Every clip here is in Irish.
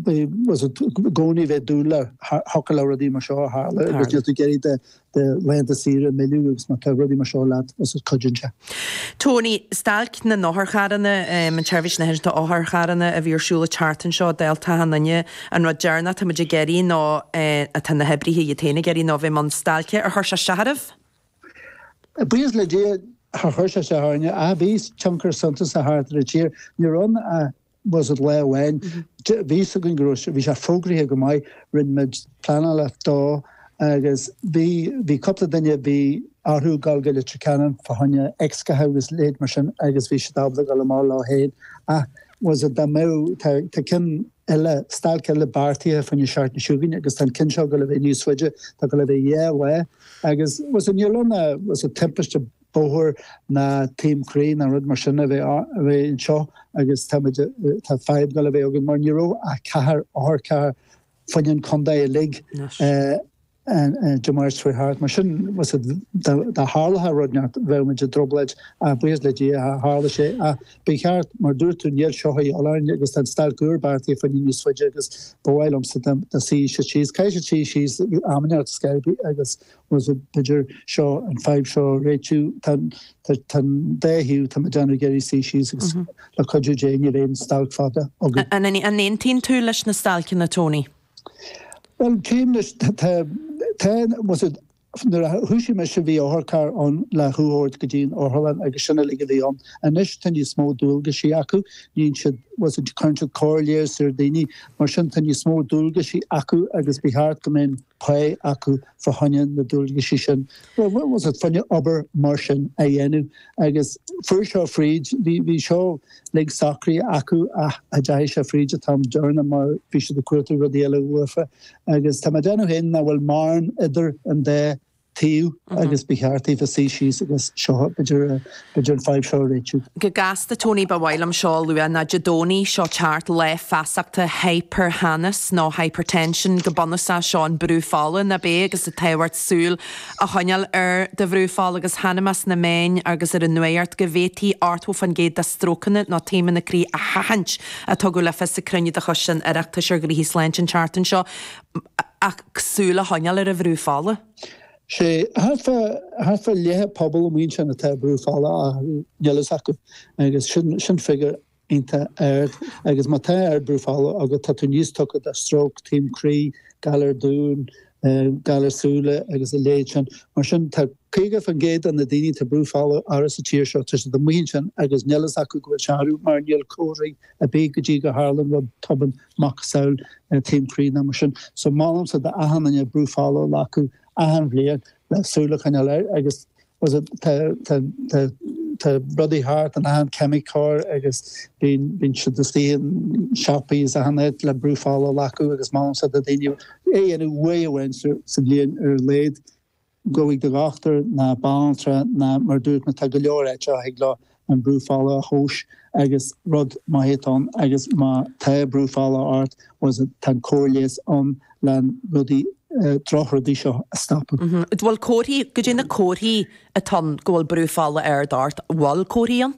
bhfuil a fhios agat, i gcónaí bheith ag dúil thiocfadh le rudaí mar seo a tharlú agus níl tú ag iarraidh do laethanta saoire a mhilleadh agus má tá rudaí mar seo leat bhfuil a fhios agat cuidíonn seo. Tony, stailc na n-otharcharranna, an tseirbhís náisiúnta otharcharranna a bhí ar siúl an tseachtain seo, dálta achan duine, an rud deireanach atá muid ag iarraidh nó atá na hoibrithe iad féin ag iarraidh ná bheith i mbun stailce ar chuir sé isteach oraibh? Buíochas le Dia, char chuir sé isteach orainne, ach bhí tionchar suntasach thart ar an tír. Ní raibh an bhfuil a fhios agat lá amháin, bhí fhios againn go raibh sé, bhí sé fógraithe go maith, rinne muid pleanálacht dó agus bhí, bhí cúpla duine, bhí orthu dhul go Leitir Ceanainn fá choinne x-ghatha agus a leithéid mar sin agus bhí siad ábalta dul amach leo féin ach bhfuil a fhios agat dá mbeadh, tá, tá ceann eile, stailc eile beartaithe fá choinne na seachtaine seo chugainn agus tá an ceann seo ag dul a bheith níos faide, tá ag dul a bheith dhá lá agus bhfuil a fhios agat níl ann ach, bhfuil a fhios agat timpiste, bóthair nó taom croí nó rud mar sin a bheith anseo agus táimid, tá fadhb ag dul a bheith againn mar ní raibh ach ceithre otharcharr fá choinne an chontae uilig de mar is faoi thart. Mar sin dá dtarlódh rud inteacht bheadh muid i dtrioblóid ach buíochas le Dia char tharla sé. Ach ba cheart, mar dúirt tú, níl seo ag dul orainn agus tá an stailc úr beartaithe fá choinne níos faide agus ba mhaith liomsa dá suífeadh siad síos. Caithfidh siad suí síos amanna agus agus Bhfuil a fhios agat b'fhéidir seo, an fadhb seo, a réitiú, tá an dá thaobh, tá mé ag déanamh ag iarraidh suí síos agus, le cuidiú Dé, níl aon stailc fada againn. An aontaíonn tú leis na stailceanna, Tony? Bhuel, cím leis. Tá, tá, bhfuil a fhios agat, nuair a thúsaigh mise bhí otharcharr ann le thú a thabhairt go dtí an otharlann agus sin uilig a bhí ann. Anois tá níos mó dualgaisí acu, níonn siad, bhfuil a fhios agat, cuireann siad comhairle ar dhaoine, mar sin tá níos mó dualgaisí acu agus ba cheart go mbeadh, pá acu fá choinne na dualgaisí sin, bhfuil a fhios agat, fá choinne obair mar sin a dhéanamh. Agus fuair seo fríd, bhí seo uilig socraithe acu ach cha deachaigh sé fríd an t-am deireanach mar bhí siad ag cuartú rudaí eile uafa. Agus tá mé ag déanamh féin nach bhfuil mórán idir an dá thaobh agus ba cheart daofa suí síos agus seo b'fhéidir b'fhéidir an fadhb seo a réitiú. Go gasta Tony ba mhaith liom seo a lua ná Dé Domhnaigh seo ag teacht lá feasachta hipirtheannas nó hypertension go bunúsach seo an brú fola nach é agus an tábhacht súil a choinneáil ar do bhrú fola agus chonaic mé sna meáin agus ar an nuacht go bhféadfaí ochtó fán gcéad de strócanna nó taomanna croí a sheachaint a tugadh le fios ag cruinniú de choiste an Oireachtais ar Ghnóthaí Sláinte an tseachtain seo. ach súil a choinneáil ar an bhrú fola. Sé thart fá leath an phobail amuigh ansin atá ardbhrú fola ach níl a fhios acu agus sin figiúr iontach ard agus má tá ard brú fola agat tá tú níos tugtha do stróc, taom croí, galar duán, galar súile agus a leithéid sin. Mar sin tá 50 fán gcéad de na daoine atá brú fola ard sa tír seo tá siad amuigh ansin agus níl a fhios acu go bhfuil sé ard mar níl comharthaí ar bith go dtí go tharlaíonn rud tobann. macasamhail taom croí nó mar sin. So mholfainnse d'achan nduine brú fola a ghlacadh achan bhliain le súil a choinneáil air agus muise tá tá rudaí thart in achan cheimiceoir agus bíonn bíonn siad istigh sna siopaí is achan áit le brú fola a ghlacadh agus mholfainnse do dhaoine é a dhéanamh uair amháin sa bhliain ar a laghad. Gabh chuig do dhochtúir, na banaltra, na, mar dúirt mé, tá go leor áit a thig leo an brú fola a thomhas agus rud má théid tú ann agus má tá brú fola ort bhuel tá an cóir leighis ann le an rudaí, drochrudaí seo a stopadh. Bhuel comharthaí, caidé na comharthaí atá ann go bhfuil brú fola ard ort, bhfuil comharthaí ann?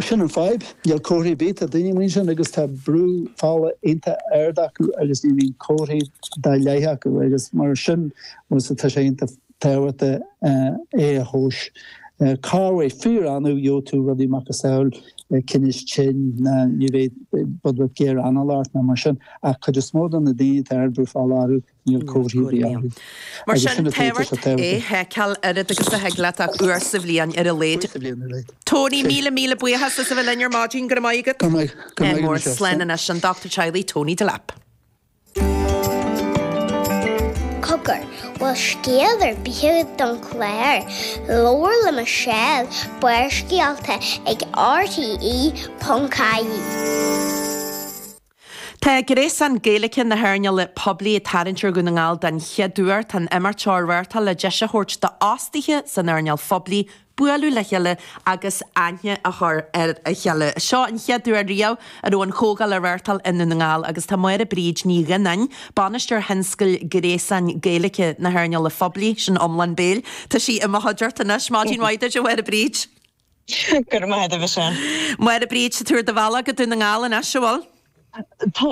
Sin an fhadhb. Níl comharthaí ar bith. Tá daoine amuigh ansin agus tá brú fola iontach ard acu agus ní bhíonn comharthaí dá laghad acu agus mar sin muise tá sé iontach tábhachtach é a thomhas. Corruair, fíor-annamh gheobhaidh tú rudaí macasamhail tinnis cinn ná go mbeidh, beidh giorra anála ort ná mar sin ach cuid is mó de na daoine a bhfuil ardbhrú fola orthu. Níl comharthaí dá laghad orthu. Mar sin, tá sé tábhachtach é a sheiceáil oiread agus a thig leat ach uair sa bhliain ar a laghad. Uair sa bhliain ar a laghad. Tony, míle míle buíochas as a bheith linn ar maidin. Go raibh maith agat. Go raibh maith. Go raibh míle maith agat. Slán anois, an Dr. Teaghlaigh Tony Delap. Cogar, bhfuil scéala ar bith agat don chlár? Labhair le Michelle, Barrscéalta ag RTÉ.ie. Tá gréasán Gaeilge na hearnála poiblí ag tarraingt ar Dhún na nGall den chéad uair. Tá an t-imeacht seo á reáchtáil le deis a thabhairt d'fhostaithe san earnáil phoiblí bualadh le chéile agus aithne a chur ar a chéile. Seo an chéad uair riamh a raibh an chomhdháil á reáchtáil i nDún na nGall agus tá Máire Bríd Ní Dhuinnín, Bainisteoir Tionscadail Ghréasán Gaeilge na hEarnála Phoiblí, sin iomlán béil, tá sí i mo chuideachta anois, maidin mhaith duit a Mháire Bríd! Go raibh maith agat, a Mhichelle. A Mháire Bríd, tá tú ar do bhealach go Dún na nGall anois, an bhfuil. Tá.